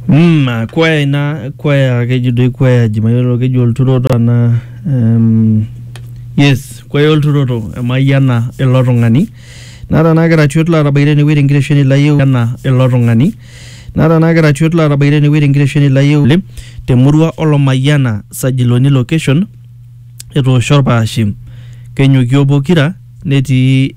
Mm, ah, kwaya ina kwaya keji doi kwaya jimayiolo keji olturoto ana um, yes kwaya olturoto emayiana ilo tung'ani nara naa keratiot laatabaite ene wueji enkiresheni layieu ana ilo tung'ani nara naa keratiot laatabaite ene wueji enkiresheni layieu le- temurua olomayiana sajiloni location etoosho orpaashe kenyokio pokira netii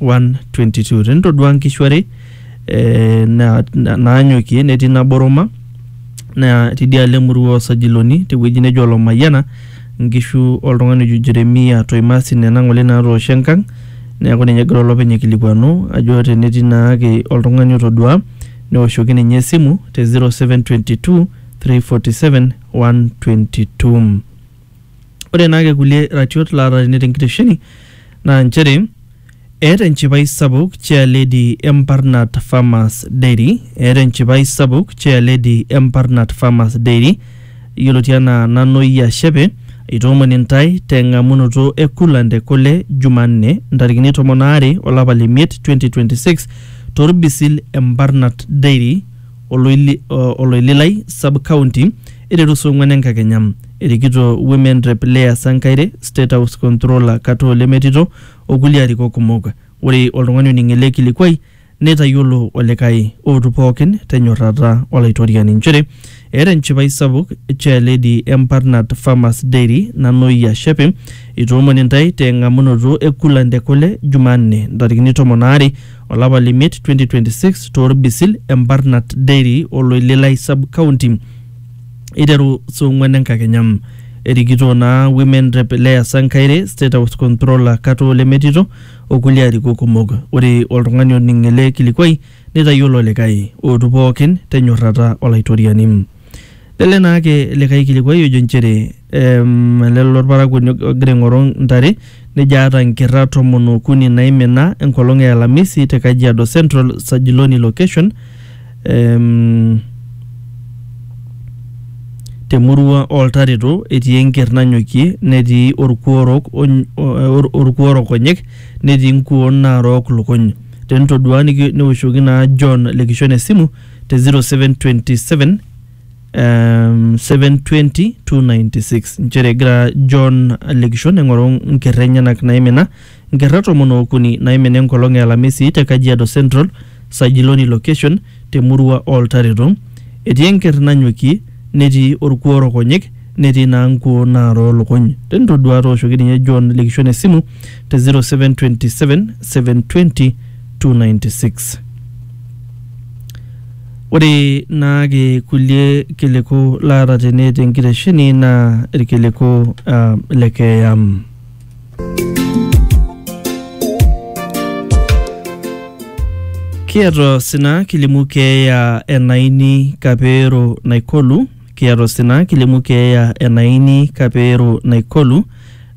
1:22 tenitodua nkishu are eh, na- na- naanyokie netii nabo Roma naa tidialo emurua osajiloni tewueji nejo Olomayiana nkishu oltung'ani ojo Jeremia Toimasi nena ng'ole naatoosho enkang neeku ninye egira olopeny aikilikuanu ajo tenetii naake oltung'ani otodua neoshoki ninye esimu te 0722 347 122 Ore naake kulie ratiot laata tene tenkitesheni naa nchere eeta enchipai sapuk chair lady e Mbarnat Farmers Dairy, eeta enchipai sapuk chair lady e Mbarnat Farmers Dairy yioloti anaa Nanoyia Shepe aitoomon intae teng'amunoto e coolant e kule Jumanne ntarikini tomon aare olapa le miet 2026 torbisil e Mbarnat Dairy Oloili, o, Oloililai sub county eiteru saa ong'uan enkakenya. Erikito Women Rep Leah Sankaire, State House Controller Katoo Lemetito o kulie arikok kumok. Ore oltung'ani oning ele kilikuai neitayiolo olikae ootu pookin te nyorrata Olaitoriani nchere eeta enchipai sapuk Chairlady e Mparnat Farmers Dairy Nanoyia Shepe eitoomon intae te ng'amunoto e Coolant e kule Jumanne ntarikini tomon aare olapa le miet 2026 too Rbisil e Mbarnat Dairy o Loililai Sub County eiteru saa ong'uan enkakenya. Erikito naa Women Rep Leah Sankaire, State House Controller Katoo Lemetito o kulie arikok kumok. Ore oltung'ani oning ele kilikuai neitayiolo olikae. Ootu pookin te nyorrata Olaitoriani. Nele naake likae kilikuai ojo nchere em, ele lolparakuoni og- ogira aing'oru ntare nejo aata nkerra tomon okuni naimina enkolong e alamisi te Kajiado Central Sajiloni location em, temurua oltareto etii enker nanyokie netii orkuo orok ony- o- or- orkuo orok onyek netii nkuon naarook lukuny tenitodua niki- newoshoki naa John le Kishon esimu te 0727 um, 720 296 nchere egira john lekishon aing'oru nkerra enyenak naimina nkerra tomon ookuni naimina enkolong e alamisi te kajiado central sajiloni location temurua oltareto etii enkerr nanyokie netii orkuo orokonyek netii naa nkuo naaroo lukuny tenitoduaa tooshoki ninye john lekishon esimu te 0727 720 296 Ore naake kulie kiliku laata tene te nkitesheni naa irkiliku ah, le keeya. Kiata osina kilimu keeya e Naini Kapeero Naikolu, kiata osina kilimu keeya e Naini Kapeero Naikolu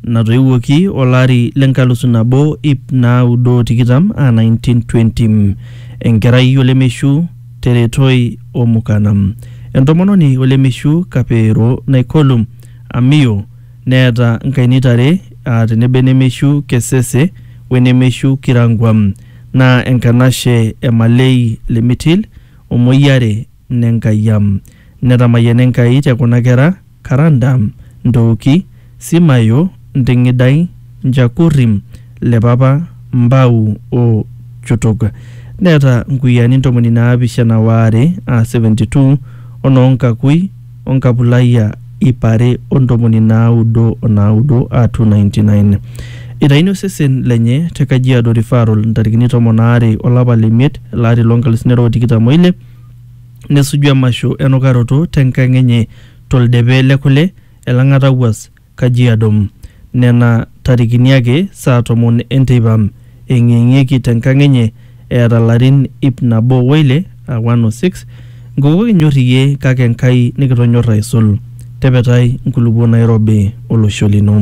natoiwuoki olari le nkalusu nabo ip naaudo o tikitam aa 1920. Enkerai olemeishu Teretoi Omukana. Entomononi olemeishu Kapeero Naikolu Amiyo neeta nkainita are aa tenebo enemeishu Kesese o enemeishu Kirangwa naa enkanashe e Malei Limitil o Moyiare Nenkaiyia. Netamayiana Enkai te kuna kera. Karanda, Ntooki, Simayo, Nting'idai, Njakurri, Lepapa, Mbau o Chutuk. Neeta nkuyiaani ntomoni naapishana waare aa 72 o noo Nkakui o Nkapulaia iip are o ntomoni naaudo o naaudo aa 299. Eitayuni osesen lenye te Kajiado Referral ntarikini tomon aare o lapa le miet ele ari loo nkalusuni are o tikitam o ile nesuju emasho enukaroto te nkang enye to ldepe le kule, Elang'ata Wuas, Kajiado. Nena tarikini ake saa tomon e nteipa, eeng'ieng'ieki te nkang enye eeta larin ip nabo o ile, aa 106, Nkoko kinyor iyie kake Enkai nikitonyor aisul. Tepetai nkulupuo nairobi olosho lino.